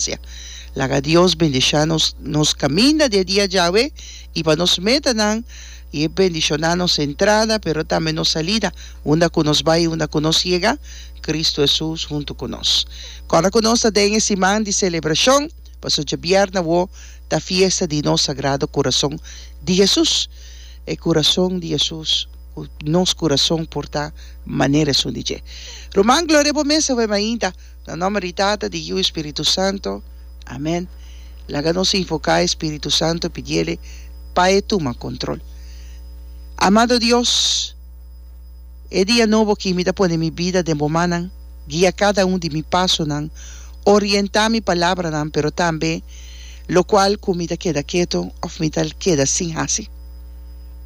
gracia. Laga Dios bendisha nos nos caminda di e dia djawe y pa nos metanan y e bendiciona nos entrada pero tambe nos salida, unda cu nos bay y unda cu nos yega, Cristo Jesús hunto cu nos. Cora cu nos ta den e siman di celebracion, pasobra djabierna awo ta fiesta di nos Sagrado Corazon di Jesús, e Corazon di Jesús cu nos corazon por ta manera esun di dje. Ruman, gloria bo mes awe mainta. Na nomber di Tata, di Yiu i Spiritu Santo. Amen. Laga nos invoká e Spiritu Santo pidiele pa e tuma control. Amado Dios, e dia nobo aki mi ta pone mi bida den bo mannan, guia cada un di mi pasonan, orientá mi palabranan pero tambe locual cu mi ta keda keto of mi ta keda sin haci.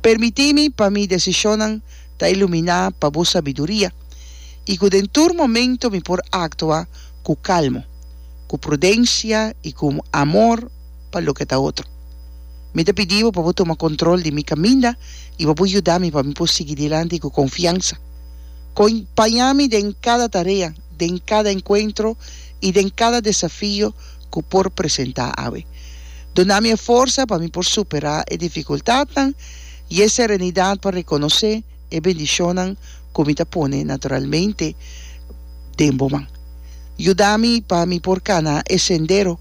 Permití mi pa mi decisionnan Ta iluminá pa bo sabiduria, i ku den tur momentu mi por aktua ku kalmu, ku prudensia i ku un amor pa loke ta otro. Mi ta pidi bo pa bo tuma kontrol di mi kaminda i pa bo yuda mi pa mi por sigui dilanti ku konfiansa. Kompañá mi den kada tarea, den kada enkuentro i den kada desafio ku por presentá awe. Duna mi e forsa pa mi por superá e difikultatnan I e serenidat pa rekonosé e bendishonnan ku mi ta pone naturalmente den bo man, yuda mi pa mi por kana e sendero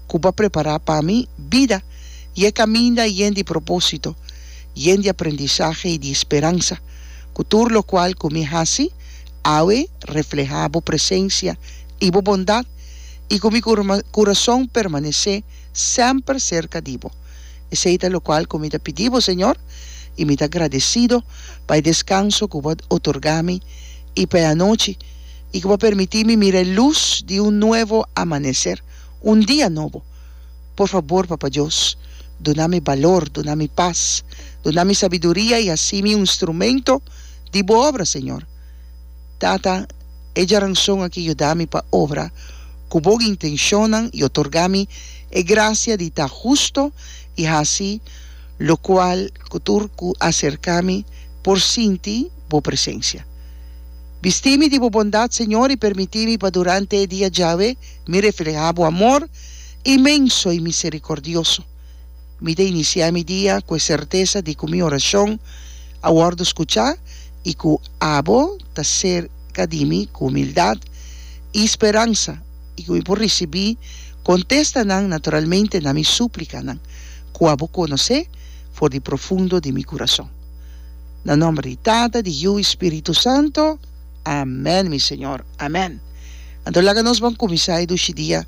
ku bo a prepará pa mi bida i e kaminda yen di propósito, yen di aprendisahe i di speransa, ku tur lokual ku mi hasi awe reflehá bo presensia i bo bondat, i ku mi kurason permanesé semper serka di bo. Esei ta lokual ku mi ta pidi bo, Señor, i mi ta gradesido pa e deskanso ku bo a otorgá mi i pa e anochi i ku bo a permití mi mira e lus di un nuevo amaneser, un dia nobo. Por fabor, Papa Dios, duna mi balor, duna mi pas, duna mi sabiduria i hasi mi un instrumento di bo obra, Señor. Tata, e djaranson aki yuda mi pa obra ku Bo intenshonnan i otorgá mi e grasia di ta hustu i hasi lokual ku tur ku aserká mi por sinti Bo presensia. Bistí mi di Bo bondat, Señor, i permití mi pa durante e dia djawe mi reflehá Bo amor inmenso i miserikordioso. Mi ta inisiá mi dia ku e sertesa di ku mi orashon a wòrdu skuchá i ku abo ta serka di mi ku humildat i speransa i ku mi por risibí kontestanan naturalmente na mi súplikanan ku abo konosé for di profundo di mi kurason. Na nòmber di Tata, di Yu i Spiritu Santu. Amèn, mi Señor. Amèn. Anto laga nos ban kuminsá e dushi dia.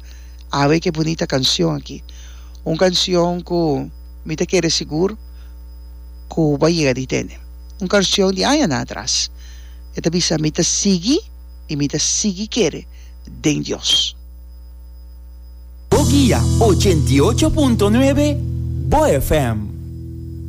Awe ke bunita kansion aki. Un kansion ku mi ta kere sigur ku bo a yega di tende. Un karsion di añanan atras. E ta bisa, Mi ta sigui i mi ta sigui kere den Dios. Bo guia ochenta y ocho punto nuebe, Bo FM.